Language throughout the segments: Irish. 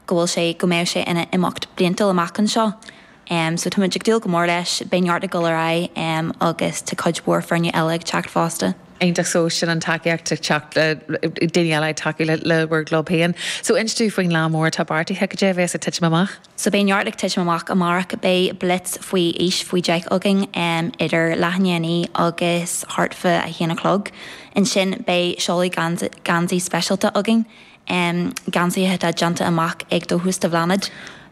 go bhfuil sé, go mbeidh sé ina imeacht bliantúil amach anseo. So tá muid ag dúil go mór leis, beidh neart ag dul ar aghaidh agus tá cuid mhór foirne eile ag teacht fosta. Iontach, so sin an tacaíocht ag teacht, daoine eile ag tacú le bhur gclub féin. So inis dúinn faoin lá mór atá beartaithe, cad é a bheas ag titim amach? So beidh neart ag titim amach amárach, beidh blitz faoi aois faoi 10 againn idir leath i ndiaidh a naoi agus thart fá a haon a chlog. Ansin beidh seoladh geansaí speisialta againn. um geansaithe atá déanta amach ag Dóchas do Bhláthnaid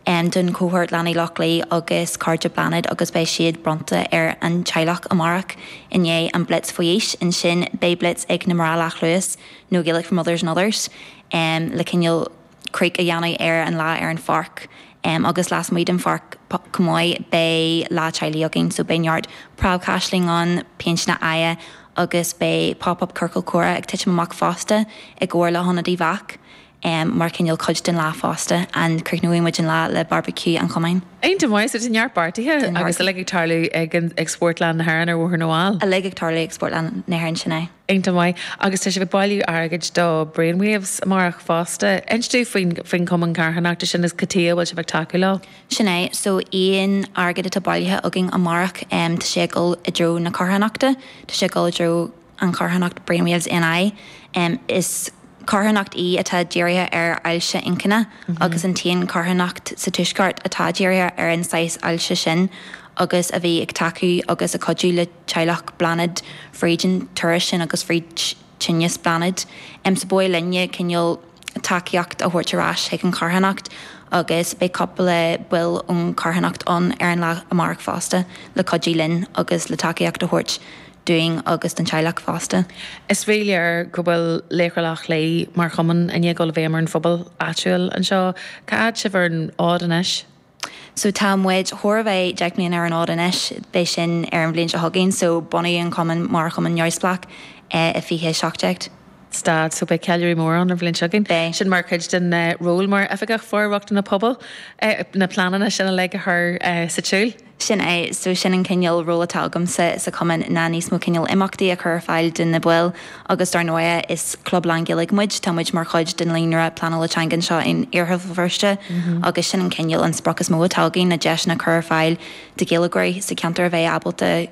um don chohórt Leanaí Loch Lao agus Cairde Bláthnaid agus beidh siad bronnta ar an teaghlach amárach i ndiaidh an Blitz Faoi Aois. Ansin beidh Blitz ag na mná leathluas nó Gaelic for Mothers and Others um le cineál craic a dhéanamh ar an lá ar an pháirc um agus lasmuigh den pháirc chomh maith beidh Lá Teaghlaigh againn so beidh neart preabchaisleáin ann, péinteanna aghaidhe. agus beidh Pop Up Ciorcal Comhrá ag titim amach fosta i gcomhar le hIonad Uíbh Eachach mar chineál cuid den lá fosta, and críochnóidh muid an lá le barbaiciú an chumainn. Iontach maith, tá neart beartaithe agus uilig ag tarlú ag Spórtlann na hÉireann ar Bhóthar na bhFál. Uilig ag tarlú ag Spórtlann na hÉireann, sin é. Iontach maith, agus tá sibh ag bailiú airgid do Brainwaves amárach fosta. Inis dúinn faoin chumann carthanachta sin agus cad chuige a bhfuil sibh ag tacú leo? Sin é. So, aon airgead atá bailithe againn amárach, tá sé ag dul i dtreo na carthanachta, tá sé ag dul i dtreo an charthanacht Brainwaves NI. Is carthanacht í atá dírithe ar ailse inchinne agus an t-aon charthanacht sa tuaisceart atá dírithe ar an saghas ailse sin agus a bhí ag tacú agus ag cuidiú le teaghlach Bláthnaid fríd an turas sin agus fríd tinneas Bláthnaid. So ba mhaith linne cineál tacaíocht a thabhairt ar ais chuig an charthanacht agus beidh cúpla baill ón charthanacht ann ar an lá amárach fosta le cuidiú linn agus le tacaíocht a thabhairt dúinn agus don teaghlach fosta. Is rí-léir go bhfuil Laochra Loch Lao mar chumann i ndiaidh dul i bhfeidhm ar an phobal áitiúil anseo. Cá fhad sibh ar an fhód anois? So tá muid chóir a bheith deich mbliana ar an fhód anois, beidh sin ar an bhliain seo chugainn, so bunaíodh an cumann mar chumann neamhspleách i 2017. Stad, so beidh ceiliúradh mór ann an bhliain seo chugainn. Beidh. Sin mar chuid den ról mar Oifigeach For-rochtana Pobail, na pleananna sin uilig a chur sa tsiúl? Sin é, so sin an cineál ról atá agamsa sa chumann ná níos mó cineál imeachtaí a chur ar fáil do na baill Agus dar ndóigh, is club lánGhaeilge muid, tá muid mar chuid den líonra pleanála teanga anseo in Iarthar Bhéal Feirste agus sin an cineál, an sprioc is mó atá againn, na deiseanna a chur ar fáil do Ghaeilgeoirí sa cheantar a bheith ábalta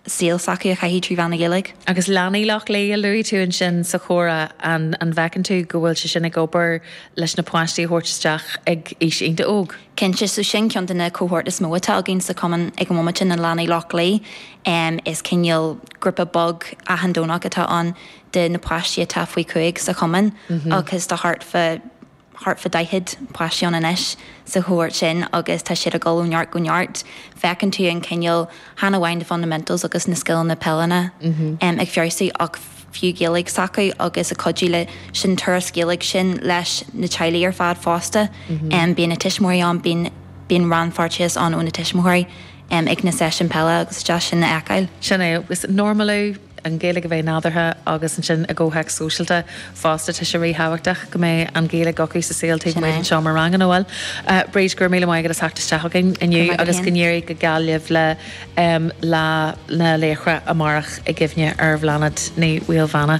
saol s'acu a chaitheamh trí mheán na Gaeilge. Agus Leanaí Loch Lao, a luaigh tú ansin sa chomhrá, an an bhfeiceann tú go bhfuil sé sin ag obair leis na páistí a thabhairt isteach ag aois iontach óg? Cinnte, so sin ceann de na cohort is mó atá againn sa chumann ag an bhomaite, na leanaí Loch Lao. em is cineál grúpa beag achan Domhnach atá ann de na páistí atá faoi chúig sa chumann agus tá thart fá, thart fá daichead páistí ann anois sa chohórt sin agus tá siad ag dul ó neart go neart. Feiceann tú an cineál, chan amháin the fundamentals agus na scileanna peileanna em ag feabhsú ach fiú Gaeilge s'acu agus ag cuidiú leis an turas Gaeilge sin leis na teaghlaigh ar fad fosta. Em bíonn na tuismitheoirí ann, bíonn, bíonn rannpháirteachas ann ó na tuismitheoirí. em, ag na seisiúin peile agus is deas sin a fheiceáil. Sin é, agus normalú, an Ghaeilge a bheith nádúrtha agus ansin i gcomhthéacs sóisialta fosta tá sé ríthábhachtach go mbeidh an Ghaeilge acu sa saol taobh amuigh den seomra ranga, nó bhuel? Eh, Bríd, go raibh míle maith agat as theacht isteach chugainn inniu agus go n-éirí go geal libh le, em, Lá na Laochra amárach i gcuimhne ar Bhláthnaid Ní Fhaolbháine.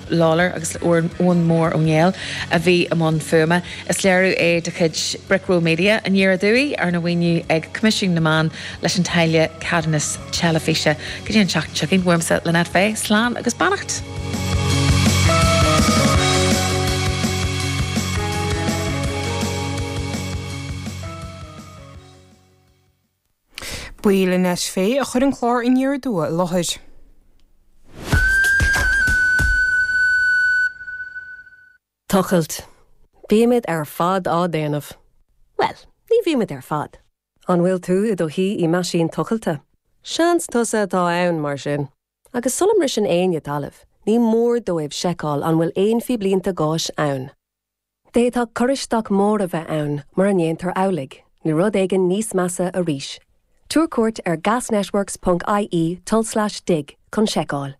Lawlor agus le Eoin Mór Ó Néill a bhí i mbun fuaime. Is léiriú é de chuid Brickroll Media, Aniar Aduaidh, arna mhaoiniú ag Coimisiún na Meán leis an táille ceadúnas teilifíse. Go dtí an tseachtain seo chugainn, uaimse, Lynette Fay, slán agus beannacht. Ba í Lynette Fay a chuir an clár Aniar Aduaidh i láthair. Tochailt. Bímid ar fad á déanamh. Bhuel, ní bhímid ar fad. An bhfuil tú i do shuí i meaisín tochailte? Seans tusa atá ann, mar sin. Agus sula mbriseann éinne talamh, ní mór dóibh seiceáil an bhfuil aon phíblínte gáis ann. D'fhéadfadh cur isteach mór a bheith ann mura ndéantar amhlaidh, nó rud éigin níos measa arís. Tabhair cuairt ar gasnetworks.ie tulslais dig chun seiceáil.